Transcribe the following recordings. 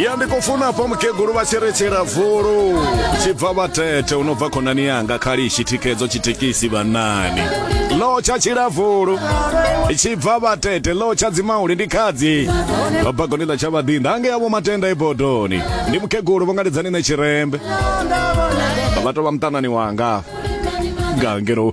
ya ndi khou funa hafha mukegulu vha tshi ri tshilavulu tshi bva vhatete u no bva khonani yanga khalishi thikhedzo tshitekisi vhanani lo tsha tshilavulu tshi bva vhatete lo tsha dzimauli ndi khadzi babagoni ḽa tsha vhaḓinda ange yavho matenda ibodoni ndi mukegulu vhongaledzani ne tshirembe vha tou vha muṱanani wanga nga ngeno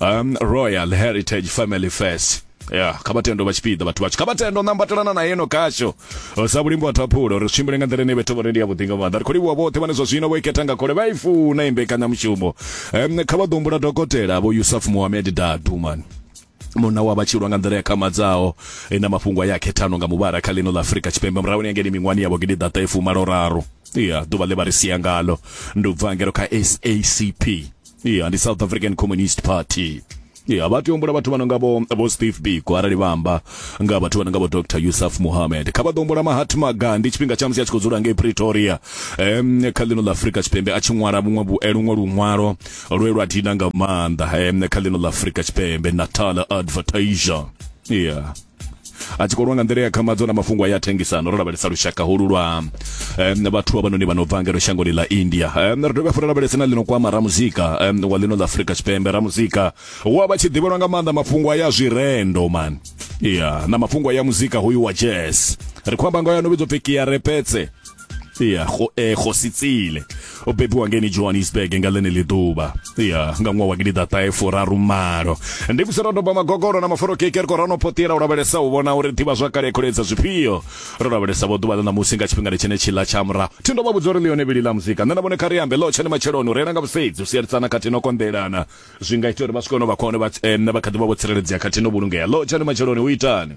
um, royal heritage family fest ya kha vha tendo vha tshipiḓa vhathu vhatsho kha vha tendo nambatelana na yeno kasho sa vhulimbo vhathu aphulo uri tshimbile nga nḓila ine vhethu vhone ndi ya vhuḓinga maḓa ri khou livhuwa vhoṱhe vhane zwa zwino vho ikhetha nga khole vha i funa i mbekanyamushumo um, kha vha ḓo humbula dokotela vho yusuf mohamed dadu mani munna wa vhatshilwa nga nḓila ya khamadzaho e na mafhungo a ya khethano nga muvhala kha ḽino ḽa afurika tshipembe murahuni yangeni miṅwani yavho gidi ḓata ifumalo raru ya ḓuvha ḽe vha ri sia ngalo ndi u bva ngero kha sacp ya ndi south african communist party ya vha tea u humbula vhathu vha no nga vho vho steve biko arali vha amba nga vhathu vha no nga vho dr yusuf muhamed kha vha ḓo humbula mahatma gandhi tshifhinga tsha musi a tshi khou dzula ngei pretoria um, kha ḽino ḽa afrika tshipembe a tshi ṅwala vhuṅwe vhu- eh, luṅwe luṅwalo lwe lwa dina nga maanḓa um, kha ḽino ḽa afrika tshipembe natal advertiser ya a tshi kolwa nga nḓila ya khamadzo na mafhungo ya thengisano ro lavhelesa lushaka holu lwa um, vhathu avhanoni vha no bva ngeno shangoni ḽa india um, ri dovha funa lavhelese na ḽino kwama ramuzika um, wa ḽino ḽa afurika tshipembe ramuzika wa vha tshi ḓivhelwa nga maanḓa mafhungo ya zwirendo man ya yeah, na mafhungo ya muzika hoyu wa jazz ri khou amba nga yo no vhidzwa pfi kiarepetse ya go eh go sitsile o bebiwa ngeni johannesburg nga ḽeneli ḓuvha ya nga ṅwaha wa gidiḓaṱahe furarumalo ndi kuserodoba magogoro na maforo keke ri khou rano potela u lavhelesa u vhona uri ḓivha zwakale ya kholedza zwifhio ro lavhelesa vho ḓuvha ḽa ṋamusi nga tshifhingani tshene tshiḽa tsha murahu thi ndo vha vhudza uri ḽione vhili ḽa muzika nṋe na vhone kha ri ambe ḽo tshene matsheloni u reila nga vhusedzi u sielisana khathihi no konḓelana zwi nga ita uri vha swike hone vha khone vha eh, kha ḓi vha vho tsireledzea khathihi no vhulungea ḽo tshene matsheloni u itani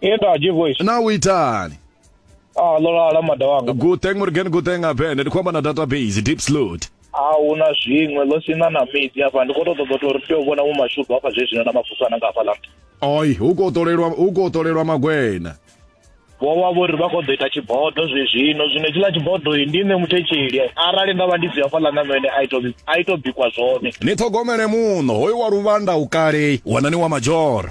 Iye ndo aje voice. na u itani Ah lo lala mada wanga. guteng murgen guteng abe ndi khomba na database deep slot A una zwiṅwe lo sina na midi hafha ndi kho to ṱoḓa uri tea u vhona mu mashudu hafha zwe zwino na mafuso ana nga hafha la. oi hu khou ṱolelwa hu khou ṱolelwa magwena Vho vha vho ri vha kho ḓo ita tshibodo zwe zwino zwino tshiḽa tshibodo yi ndi nṋe muthetsheli arali nda vha ndi si hafha la na mene a ito a ito bikwa zwone. ni ṱhogomele muno hoyu wa luvhanda u kale wanani wa majora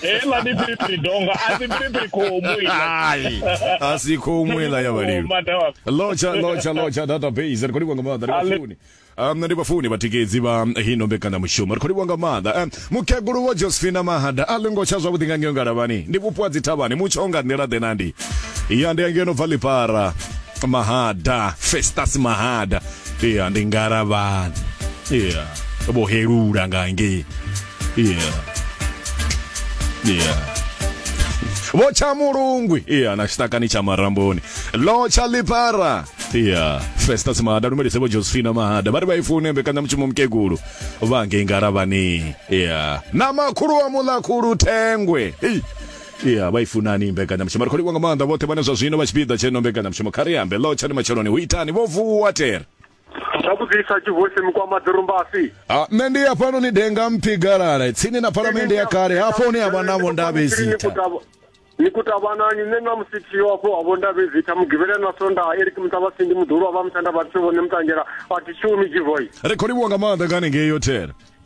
heila ndi piripiri donga asi piripiri khomu Ai, asi khomu ila ya vhalimi lotsha lotsha lotsha database ri khou livha nga maanḓa ri vhafuni um ndi vhafuni vhatikedzi vha hino mbekanyamushumo ri khou livha nga maanḓa um mukegulu wa josephina mahada a ḽingo tsha zwavhuḓi nga ngeo ngalavhani ndi vhupo ha dzithavhani mutsho nga nḓila ḓe na ndi ya ndi angeno bva ḽipara mahada festas mahada ya ndi ngalavhani ya vho helula nga ngei yeah yeah vho tsha mulungwi iya na tshitakani tsha maramboni lo tsha lipara iya festas mahada lumelise vho josephina mahada vha ri vha i fune mbekanyamushumo mukegulu vha ngei ngaravhani iya na makhulu wa muḽakhulu thengwe Ei. iya vha i funani mbekanyamushumo ri khou livhwa nga maanḓa vhoṱhe vhane zwa zwino vha tshipiḓa tsheno mbekanyamushumo kha ri ambe lo tsha ni matsheloni hu itani vho vuwa tere Zwa vhudzisa Tshivhosi Mukwama Ḓirumbasi. A, nṋe ndi hafhanoni denga mpfi galala tsini na phalamende ya kale hafho hune ha vha na vhondavhezitha ni kutavhanani nṋe na musithiyo hafho ha vhondavhezitha mugivhela na sonda eric muṱavhasindi muḓulu wa vha musanda vhathu vhone muṱanzhela a thi shumi jivoyi ri khou livhuwa nga maanḓa nga hanengei yothela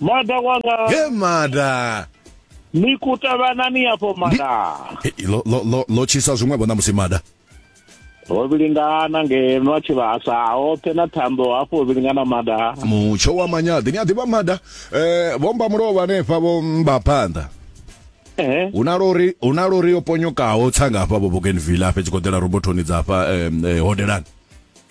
Mada wanga. He mada. Ni kutavana ni afho mada. Lo lo lo lo chisa zwiṅwe vho ṋamusi mada. ho vhilingana ngeno a tshi vhasa hoṱhe na thambo hafho ho vhilingana mada mutsho wa manyaḓi ni a ḓivha mada eh vhomba mulovha hanefha vho mba phanḓa hu na lori hu na lori yo ponyokaho tsanga hafha vho Bougainville hafha tshi koḓela robothoni dza hafha eh, hodelani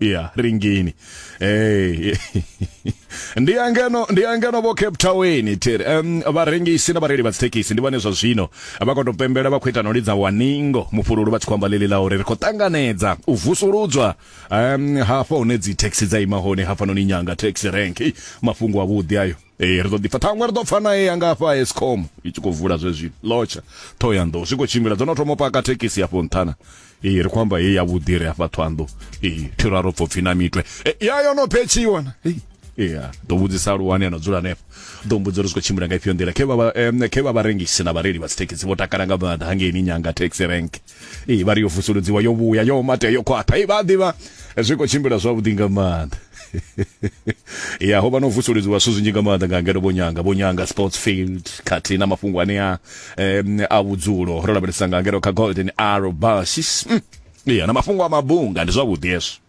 ya ringini hey. ndi angano ndi angano vho cape town tiri um, vharengisi na vhareili vha dzithekhisi ndi vhane zwa zwino vha khou tou pembela vha khou ita no lidza waningo mufhululu vha tshi khou amba ḽeḽi ḽa uri ri khou ṱanganedza u vusuludzwa um, hafha hune dzithekhisi dza ima hone hafhanoni nyanga taxi rank mafhungo avhuḓi ayo ee ri ḓo ḓipfa ṱhaṅwe ri ḓo pfa nae ya nga afha escom i tshi khou vula zwezwi lotsha thohoyanḓou zwi khou tshimbila dzo no thoma paka thekhisi afho nṱhana ee ri khou amba ye yavhuḓi re afha thohanḓou ee thiro a ro pfo pfhi na mitwe e, ya yo no phetshiwa na ya ḓo vhudzisa luwani ano dzula hanefho ḓo mbudza uri zwi khou tshimbila nga ifhio nḓila khe vha khe vha vharengisi na vhareili vha dzithekhisi vho takala nga maanḓa hangeini nyanga taxi rank ee vha ri yo vusuludziwa yo vhuya yo mate yo khwaṱha ee vha a ḓivha zwi khou tshimbila zwavhuḓi nga maanḓa ya ho vha no vusuludziwa zwithu zwinzhi nga maanḓa nga ngeno vho nyanga vho nyanga sports field khathihi na mafhungo anea um a vhudzulo ro lavhelesa nga ngeno kha golden arrow basis mm. ya na mafhungo a mabunga ndi zwavhuḓi hezwo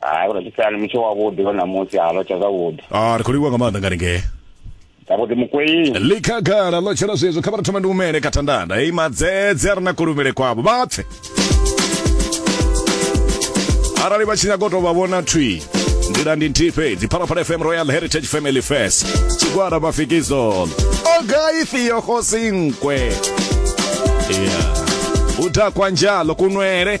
hai uri tshisani mutsho wavhuḓi wa ṋamusi ha lotsha zwavhuḓi ah ri khou livhuwa nga maanḓa nga ringee zwavhuḓi mukweini likhagala ḽo tshela zwezwo kha vha ri thome ndi humele kha thandanda hei madzedze a re na kulumele kwavho vha pfe arali vha tshi nyaga u tou vha vhona thwi nḓila ndi nthihi fhedzi phalaphala fm royal heritage family fest tshigwada mafikizolo ogai theo khosinkwe yeah. udakwa njalo kunwele